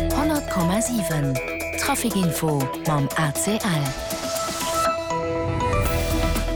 100,7 Traficinfo mam ACL.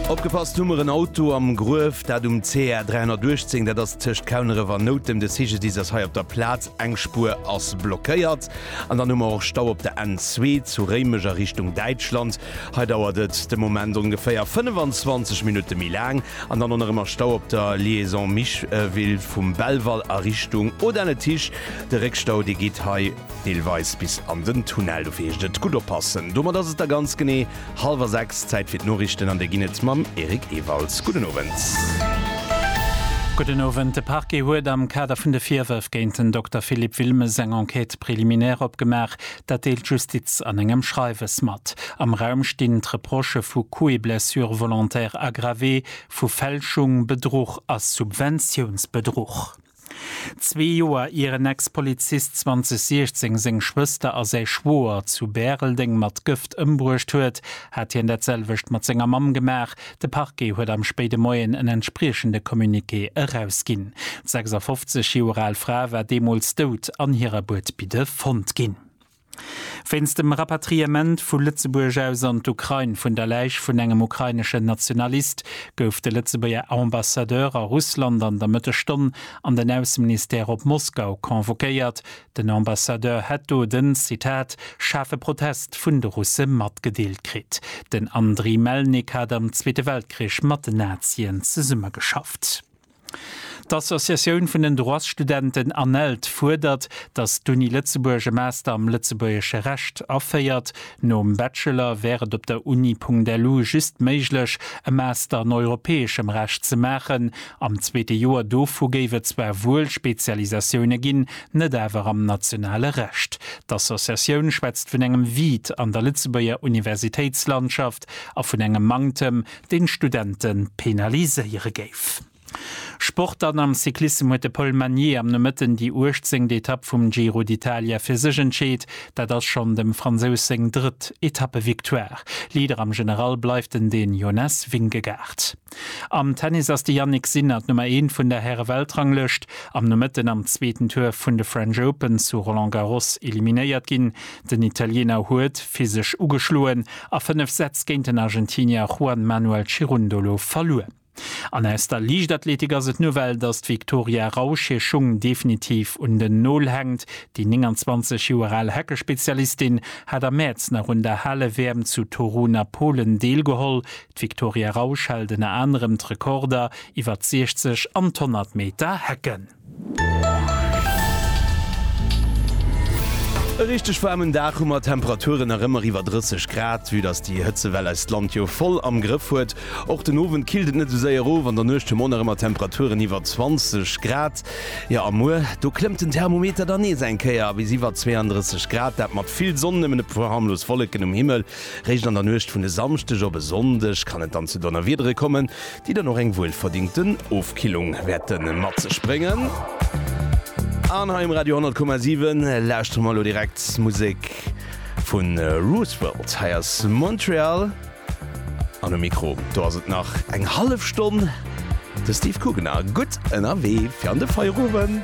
Opgepasst, hu mer en Auto am Gruef, dat um CR 318, dat ass tëscht Kauneref an Noutem. De CGDIS ass hei op der Plaz, eng Spuer ass blockéiert. An dann hu mer och Stau op der N2 zu Réimech a Richtung Däitschland. Hei dauert et de Moment ongeféier 25 Minutte méi laang. An dann och nach ëmmer Stau op der Liaison Micheville vum Belval a Richtung Audun-le-Tiche. De Réckstau, dee geet hei deelweis bis an den Tunnel. Dofir heescht et gutt oppassen. Domat ass et da ganz genee hallwer sechs. Zäit fir d'Noriichten an déi ginn et mam Eric Ewalds. Gudden Owend. Gudden Owend. De Parquet huet am Kader vun de Virwërf géint den Dokter Philippe Wilmes eng Enquête préliminaire opgemaach. Dat deelt d'Justiz an engem Schreiwes mat. Am Raum stinn d'Reprochë vu Coup et blessure volontaire aggravé, vu Fälschung, Bedruch a Subventiounsbedruch. Zwee Joer ier en Ex-Polizist 2016 seng Schwëster a säi Schwoer zu Bäreldeng mat Gëft ëmbruecht huet, hat hien dat selwecht mat senger Mamm gemaach, De Parquet huet am spéide Moien en entspriechende Communiqué erausginn. D'sechsafofzeg Joer al Fra war deemools dout an hirer Buedbidde fonnt ginn. Wéinst dem Rapatriement vu Lëtzebuerg aus an d'Ukrain vun der Läich vun engem ukraineschen Nationalist gouf de Lëtzebuerger Ambassadeur a Russland an der Mëttesstonn an den Ausseministère op Moskau convoquéiert, Den Ambassadeur hätt do den, Zitat, schaarfe Protest vun de Russe matgedeelt kritt. Den Andriy Melnik hat am Zweete Weltkrich mat den Nazien zesummegeschafft. D'Associatioun vun den Droitsstudenten ANELD fuerdert, datt d'Uni Lëtzebuerg e Master am lëtzebuergesche Recht aféiert. Nom Bachelor wär et op der Uni.lu just méiglech, e Master an europäeschem Recht ze maachen. Am zweete Joer dovu géif et zwar wuel Spezialisatioune ginn, net awer am nationale Recht. D'Associatioun schwätzt vun engem Vide an der Lëtzebuerger Universitéitslandschaft a vun engem Manktem, deen d'Studente penaliséiere géif. Sport dann, Am Cyclissem huet de Paul Magnier am Nomëtten déi uechtzéngt Etapp vum Giro d'Italia fir sech entscheet. Dat ass schonn dem Fransous seng drëtt Etappevictoire. Leader am General bleift den Dän Jonas Vingegaard. Am Tennis ass de Jannik Sinner d'Nummer eent vun der Häre-Weltranglëscht am Nomëtten am zweeten Tour vun de French Open zu Roland Garros eliminéiert ginn. Den Italiener huet physesch ugeschloen a fënnef Sätz géint den Argentinier Juan Manuel Cirundolo verluer. An aus der Liichtathletik ass et d'Nouvelle, datt d'Victoria Rausch hir Schung definitiv un den Nol hänkt. Déi 29 Joer al Hacke-Spezialistin hat am Mäerz nach un der Hale-WM zu Torun a Polen deelgeholl. D'Victoria Rausch hält ënner anerem d'Rekorder iwwer d'Sichzeg an d'Honnert Meter Hecken. E richteg waarmen Dag hu mer, Temperaturen nach ëmmer iwwer 30 Grad, vue dass déi Hëtzewell eist Land jo voll am Grëff huet. Och den Owend killt et net sou séier of, an der Nuecht hu mer och nach ëmmer Temperaturen iwwer 20 Grad. Jo a muer do klëmmt den Thermometer dann nees eng Kéier bis iwwer 32 Grad, dat mat vill Sonn, nëmmen e puer harmlos Wolleken um Himmel. Réischt an der Nuecht vun e Samschdeg op e Sonndeg kann et dann zu Donnerwiedere kommen, déi dann och eng wuelverdingten Ofkillung wäerte mat sech bréngen. An hei um Radio 100,7 lauschtere mer elo direkt Musek vu Roosevelt. Hei ass Montreal an um Mikro do ass et nach eng hallef Stonn de Steve Coogan a gutt ënnerwee fir an de Feierowend.